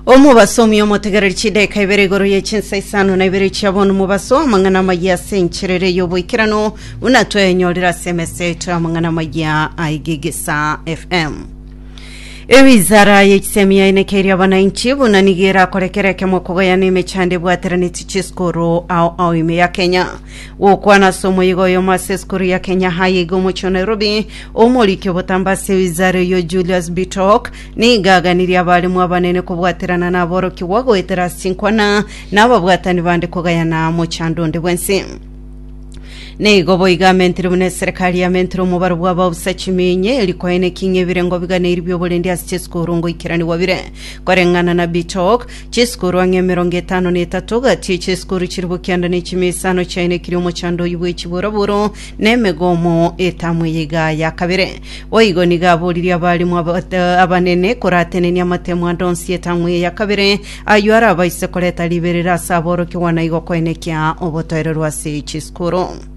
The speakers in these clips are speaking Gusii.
omobasomi omotegereri chidaeka ibere igoro ye chinsa isano na ibere chia bono mobaso amang'ana amaya ase encherere y'oboikeranu buna twaenyorire ase emesa yaito y'amang'ana amaya aigigisa fm ewizara y'echisemi yaenekeirie abananchi buna nigo erakorekera ekemo kogoyana emechando ebwateraneti chisukuru ao ao ime ya kenya Gokwana ase omoyiga oyomo ase esukuru ya Kenya High iga omochie o Nairobi, omoriki obotambe ase ewizara eyo Julius Bitok nigo aganirie abaremu abanene kobwaterana naborokigwa goetera ase chinkwana na ababwatani bande kogayana mochando onde bwensi. Nigo boigo amentire buna eserekari yamentire omobaro bw'ababusa chimiinye erio kwaeneki ng'a ebirengo biganeirie bi'oborendi ase chisukuru ngoikeranigwa bire koreng'ana na Bitok Chisikuru ang'e emerongo etano na etato gati ye chisikuru chiria bokianda ne chimesa ano chiaino ekiri omochando oyio bwe chiboroboro na emegomo etamu eye iga ya kabere. Boigo nigo aboririe abaalimu abate abanene koratenenia amatemo ande onsi etamu eye ya kabere, ayio arabaise koreta riberera ase aborokigwa na igo koenekia obotoereru ase chisikuru.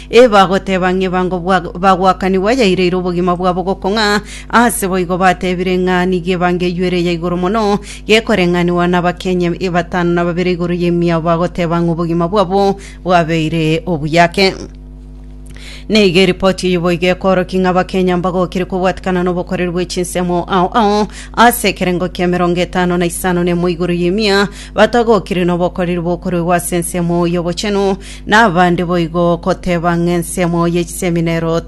Ebagoteba ng'ebango bwa bagwakanigwa yaireire obogima bwabo gokong'a, aase boigo batebire ng'a nigo ebango eyio ere eya igoro mono, gekoreng'anigwa n'abakenya batano na babere igoro y'emiao bagoteba ng'a obogima bwabo bwabeire obuyake. Nigo eripoti eyio boigo ekoorokia ng'a abakenya mbagokire kobwatikana nobokoreri bwe chinsemo ao ao aase ekerengo ki'emerongo etano na isano nemo igoro y'emia, Batagokire nobokoreri bokoruegwa ase ensemo y'obochenu, na abande boigo goteba ng'a ensemo ye chisemi nerooti.